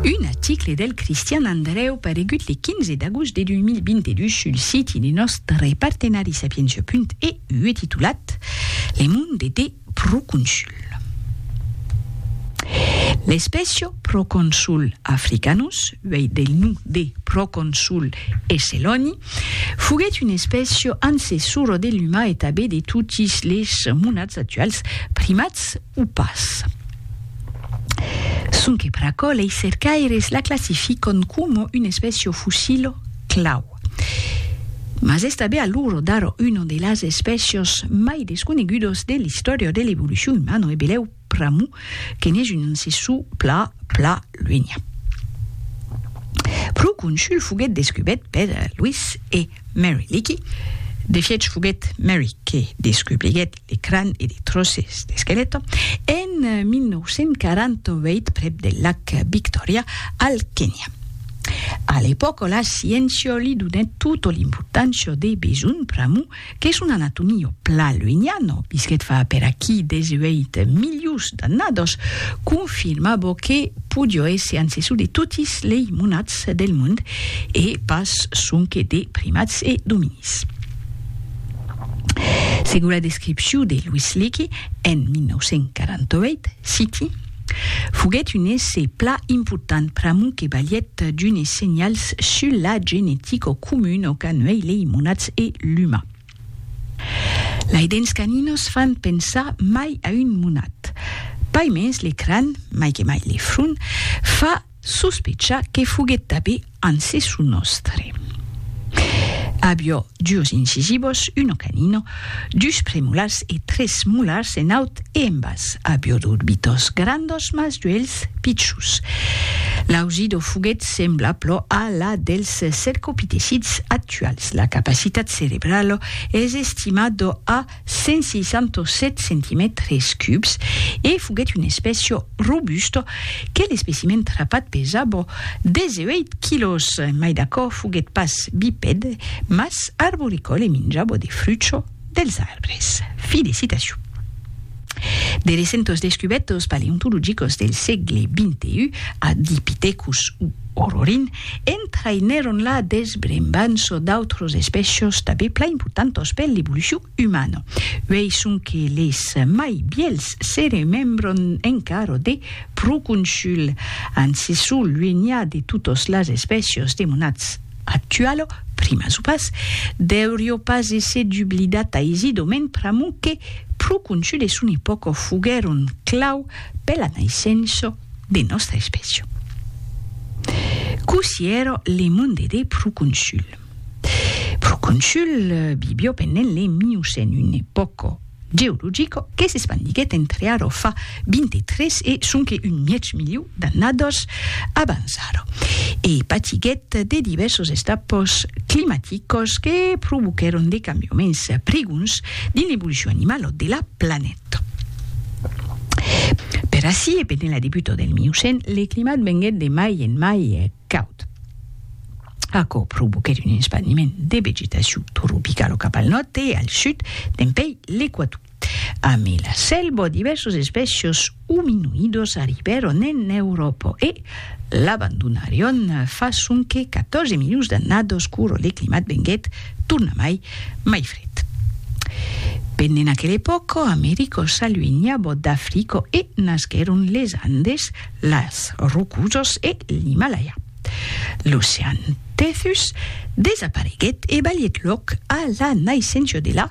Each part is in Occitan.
Un aticle del Cristian Andrèu paregut le 15 d'agost de 2022 sul siti de nòstre partenari Sapientia.eu titulat Le monde de Proconsul. L'espècia Proconsul africanus, uèi del nom de Proconsul esseloni, foguèt una espècia ancessora de l'umà e tanben de totis les monats actuals, primats, o pas. Sonque per aquò lei cercaires la classificon coma un espècio fossil clau. Mas es tanben a l'ora d'ara una de las espècios mai desconegudas de l'istòria de l'evolucion umana e belèu pr'amor que n'es un ancessor pla pla luenha. Proconsul foguèt descubèt per Louis e Mary Leakey, de fièch foguèt Mary que descubriguèt de cràn e de tròces d'esquelèt, en 1948 prèp del lac Victòria, al Kenya. A l'epòca la sciéncia li donèt tota l'importància de besonh pr'amor que son anatomia o plan luenian, o visquèt fa per aquí 18 milions d'annadas, confirmava que podiá èsser ancessor de totis lei monats del mond e pas sonque de primats e dominis. Segur la descripciu de Louis Leakey en 1948, citi, Foguèt un essai pla important pr'amor que balhèt d'unes senhals sus la genetica o comun o qu'an uèi lei monats e l'uma. Lei dents caninos fan pensar mai a un monat. Paimens le cran, mai que mai le front, fa Sospechar que foguèt tabé ancessu nòstre. Avió dus incisivos, uno canino, dus premolars e tres molars en aut e en bas. Avió d'orbitos grandos mas d'uelhs pichus. L'ausido foguèt sembla plò a la dels cercopitecids actuals. La capacitat cerebralo es estimado a. 167 centimètres cubs e foguèt un espècio robust que l'especimen trapat pesabo 18 quilòs, mai d'aquò foguèt pas bipèd, mas arboricòl e minjabo de frucho dels arbres. Felicitacion! De recentos descubèrtos paleontologicos del sègle xxi, Ardipithecus u Orrorin, entraïnèron la desbrembança d'autres espècias tanben plan importantas per l'evolucion umana. Uèi sonque les mai vièlhs se remembran encara de Proconsul, ancessor luenià de totas las espècias de monats actuala, primas o pas, deuriá pas èsser dublidat aisidament pr'amor que Proconsul e son epòca foguèron clau per la naissença de nòstra espècia. Cossí èra le monde de Proconsul? Proconsul vivió pendent le Miocèn, un epòca geologica que s'espandiguèt entre ara fa 23 e sonque un mièg miliu d'annadas abans ara e patiguèt de divèrsas estapas climaticas que provoquèron de cambiaments prigons dins l'evolucion animala de la planeta. Per ací e pendent la debuta del Miocèn, le climat venguèt de mai en mai caud. Aquò provoquèt un espandiment de vegetacion tropicalo cap al nòrd e al sud dempèi l'equator. Amé la selva, divèrsos espècios ominoïdos arribèron en Euròpa e, L'abandonarion fa sonque 14 milions d'annados quoro de climat venguèt tornamai mai fred. Pendent aquel epòco, Americo s'aluenhabo d'Africo e nasquèron les Andes, las Rocusos e l'Himalaya. L'ocean Tethys desapareguèt e balhèt lòc a la naissencia de la.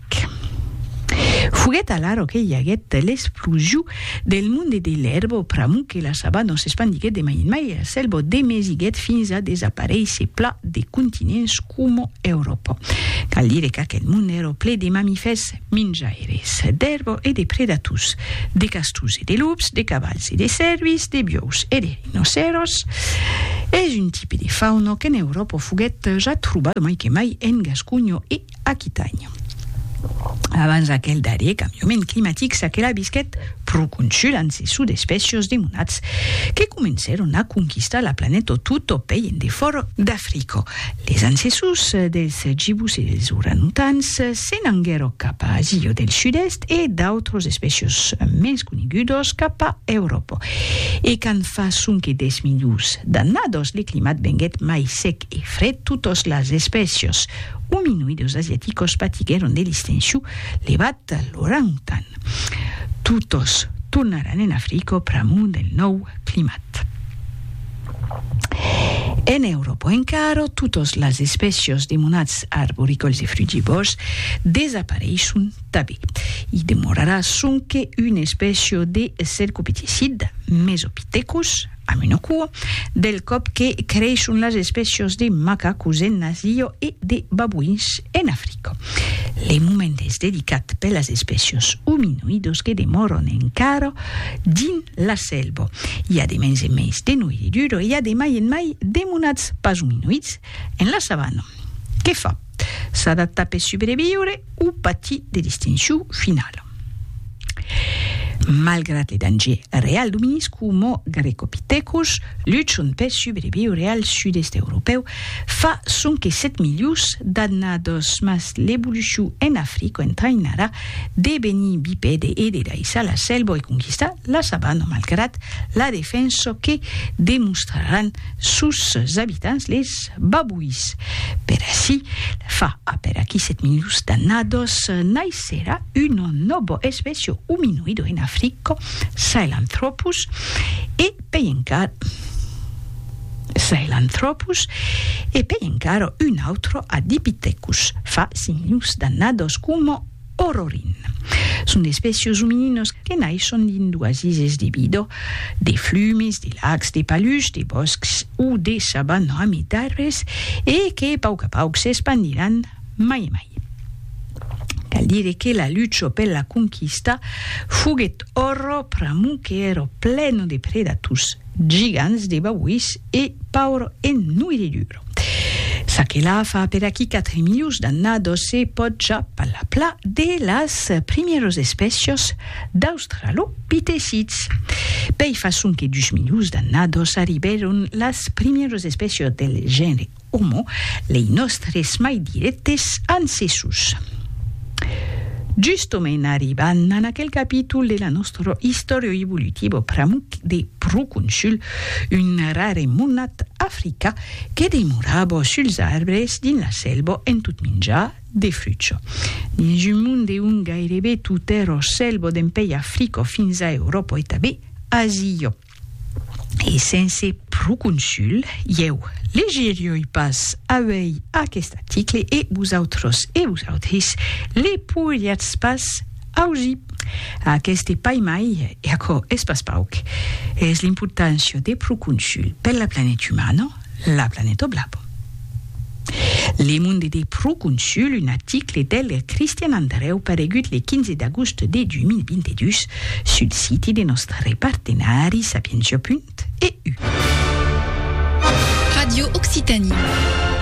Québec. Foguèt alara que i aguèt l'esplosion del monde de l'èrba pr'amor que la sabana s'espandiguèt de mai en mai e la sèlva demesiguèt fins a desaparéisser plan de continents coma Euròpa. Cal dire qu'aquel monde èra ple de mamifèrs minjaires d'èrba e de predators, de castors e de lops, de cavals e de cèrvis, de biòus e de rinocèros. Es un tipe de fauna qu'en Euròpa foguèt ja trobada mai que mai en Gasconha e Aquitània. Abans aquel darrier cambiament climatic s'aquela visquèt pro consul amb ses sudespècios de monats que comencèron a conquistar la planèto tot o pei en defòra d'Africa. Les ancessors dels gibus e dels oranutans se n'anguèro cap a Asia del Sud-Èst e d'autros espècios mens conegudos cap a Euròpa. E quand fa sonque 10 milions d'annados le climat venguèt mai sec e fre totas las espècias ominoidas asiaticas patiguèron de l'extencion levat l'orang-tan. Totas tornaràn en Africa pr'amor del nòu climat. En Euròpa encara, totas las espècias de monats arboricòls e frugivòrs desapareisson tanben. I demorarà sonque una espècia de cercopitecid, Mesopithecus Amb una cua, del còp que creishon las espècias de macacos en Asia e de babuins en Africa. Le moment es dedicat per las espècias ominoidas que demòran encara dins la selva. I a de mens en mens de noiridura e i a de mai en mai de monats pas ominoids en la savana. Qué fa? S'adaptar per subreviure o patir de l'extincion finala. Malgrat le danger real du minisc Homo grecopithecus, luchant per subreviure al sud-èst europèu fa sonque 7 milions d'annadas, mas l'evolucion en Africa entraïnarà devenir bipède e de daissar la selva e conquistar la sabana malgrat la defensa que demostraràn sus abitants les babuis. Per ací, fa aperaquí 7 milions d'annados, naissera un nobo especio huminoido en Africo, Sahelanthropus, e pei encara Sahelanthropus, e pei encara un autro a Dipithecus, fa 5 milions d'annados, coma Ororin. Son espècios omininos que naisson dins d'oasises de vidò, de flumes, de lacs, de palucs, de bòscs o de saban ramitarres e que pauc a pauc s'espandiràn mai e mai. Cal dire que la lucho per la conquista foguèt oro pr'amor que èro pleno de predators, gigants de babuís e pauro ennuiredur. Ça que la fa per aquí 4 milius d'annados se pòt ja palapla de las primièros espècios d'australopitecits. Pei façon que 2 milius d'annados arribèron las primièros espècios del genre Homo, lei nòstres mai dirèctes ancessors. Justomènt arriban a aquel capítol de la nòstra istòria evolutiva pr'amuc de pro consul Un rare monat africa que demorabo suls arbres dins la selbo en tot minjar de frucho. Dins un mond de on gairebe tot er o selbo dempei Africo fins a Europo e tabé Asio e sense proconsul, ieu legerioi pas auei aquest article e vosautros e vosautris le poiriatz pas Augi! Aqueste pai mai, e aquò es pas pauc, es l'importància de Proconsul per la planet umana, la planeta blava. Le Monde de Proconsul, un article del Cristian Andrèu paregut le 15 d'agost de 2022 sul siti de nòstre partenari Sapientia. EU. Radio Occitanie.